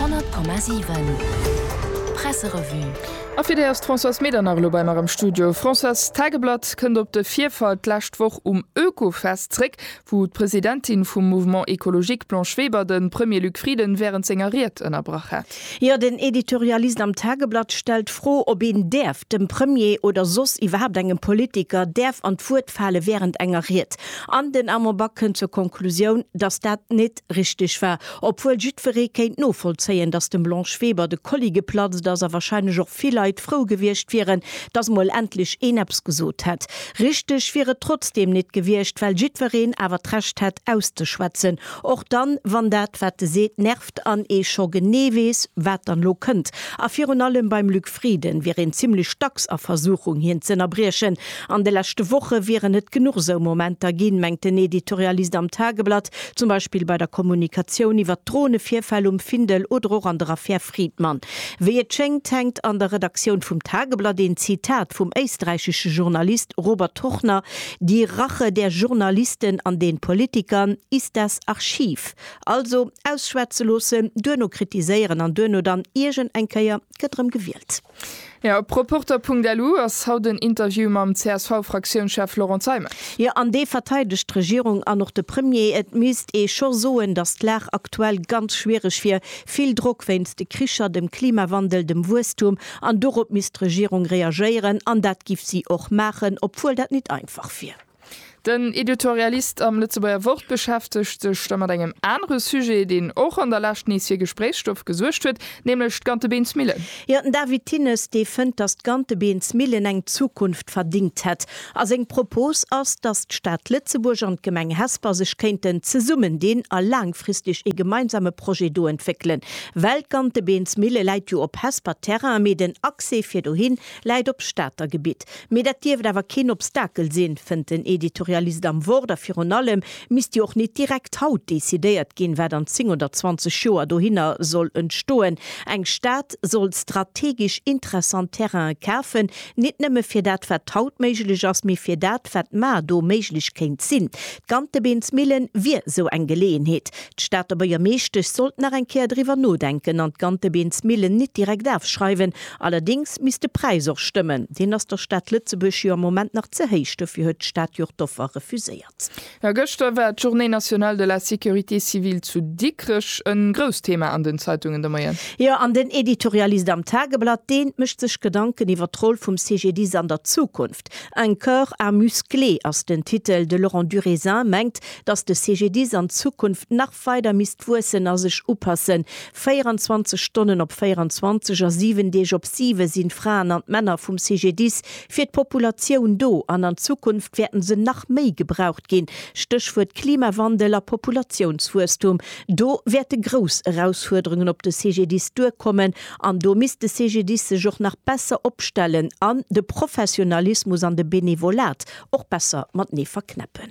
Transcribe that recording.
100,7 Presserevue. A fir déi ass d'Françoise Medernach elo bei mer am Studio. Françoise, d'Tageblatt kënnt op de Virfall d'lescht Woch um Oekofest zréck, wou d'Presidentin vum Mouvement Ecologique Blanche Weber de Premier Luc Frieden wärend senger Ried ënnerbrach hat. Jo, den Editorialist am Tageblatt stellt d'Fro, ob een däerf dem Premier oder soss iwwerhaapt engem Politiker däerf an d'Wuert fale wärend enger Ried. An den Armand Back kënnt zur Konklusioun, datt dat net net richteg war, obwuel jiddweree kéint novollzéien, datt dem Blanche Weber de Kolli geplatzt ass a wahrscheinlech och vill Leit frou gewiescht wieren, datt mol endlech een eppes gesot hätt. Richteg wier et trotzdeem nit gewiescht, well jiddwereen awer d'Recht hätt auszeschwätzen, och dann, wann dat, wat e seet, nervt an ee scho genee weess, wat dann elo kënnt. A virun allem beim Luc Frieden wier een zimlech dacks a Versuchung, hien z'ënnerbriechen. An de leschte Woche wieren et genuch esou Momenter ginn, mengt den Editorialist am Tageblatt, Zum Beispill bei der Kommunikatioun iwwer d'Dronevirfäll um Findel oder och an der Affär Fridman. Wéi et schéngt, hänkt an der Redaktioun vum Tageblatt een Zitat vum éisträichesche Journalist Robert Turchner, Die Rache der Journalisten an den Politikern ist das Archiv. Also, ausschwätze loossen, duerno kritiséieren an duerno dann iergend eng Kéier gëtt erëm gewielt. Jo, op Reporter Punkt lu ass haut en Interview mam CSV-Fraktiounschef Laurent Zeimet. Jo, an dee verteidegt d'Regierung an och de Premier. Et misst ee scho soen, datt d'Lag aktuell ganz schwiereg wier. Vill Drock wéinst de Kricher, dem Klimawandel, dem Wuesstum. An dorop misst d'Regierung reagéieren. An dat giff si och maachen, obwuel dat nit einfach wier. Den Editorialist am Lëtzebuerger Wort beschäftegt sech da mat engem anere Sujet, deen och an der Lescht nees fir Gespréichsstoff gesuergt huet, nämlech d'Gantebeensmillen. Jo, den David Thinnes, dee fënnt, datt d'Gantebeensmillen eng Zukunft verdingt hätt. A seng Propos ass, datt d'Stad Lëtzebuerg an d'Gemeng Hesper sech kéinten zesummen dinn a laangfristeg ee gemeinsame Projet do entwéckelen. Well d'Gantebeensmille läit jo op Hesper Terrain, mee den Accès fir dohin Läit op Stater Gebitt, mee dat dierft awer keen Obstakel sinn, fënnt den Editorialist am Wort. A virun allem misst jo och nit direkt haut decidéiert ginn, wat an 10 oder 20 Joer dohinner soll entstoen. Eng Stad soll strategesch interessant Terrainen kafen, nit nëmme fir dat, wat haut méiglech ass, mee fir dat, wat mar do méiglech kéint sinn. D'Gantebeensmillen wier esou eng Geleeënheet. D'Stater Buergermeeschtesch sollt nach eng Kéier driwwer nodenken an d'Gantebeensmillen nit direkt afschreiwen, Allerdéngs misst de Präis och stëmmen. Deen ass der Stad Lëtzebuerg jo am Moment nach ze héich. Dofir huet d'Stad jo och d'Offer refuséiert. Jo, gëschter war d'Journée nationale de la sécurité civile zu Dikrech en grousst Thema an den Zeitungen de Moien. Jo, an den Editorialist am Tageblatt, deen mécht sech Gedanken iwwer d'Roll vum CGDIS an der Zukunft. Un corps à muscler ass den Titel. De Laurent Durézin mengt, dass de CGDIS an Zukunft nach. weider misst wuessen a sech upassen. 24 Stonnen op 24 a 7 Deeg op 7 sinn d'Fraen an d'Männer vum CGDIS fir d'Populatioun do an an Zukunft wäerten se nach méi gebraucht ginn. Stéchwuert Klimawandel a Populatiounswuesstum, do wäerte grouss Erausfuerderungen op de CGDIS duerkommen an do misst de CGDIS sech och nach besser opstellen an de Professionalismus an de Benevolat och besser matenee verknäppen.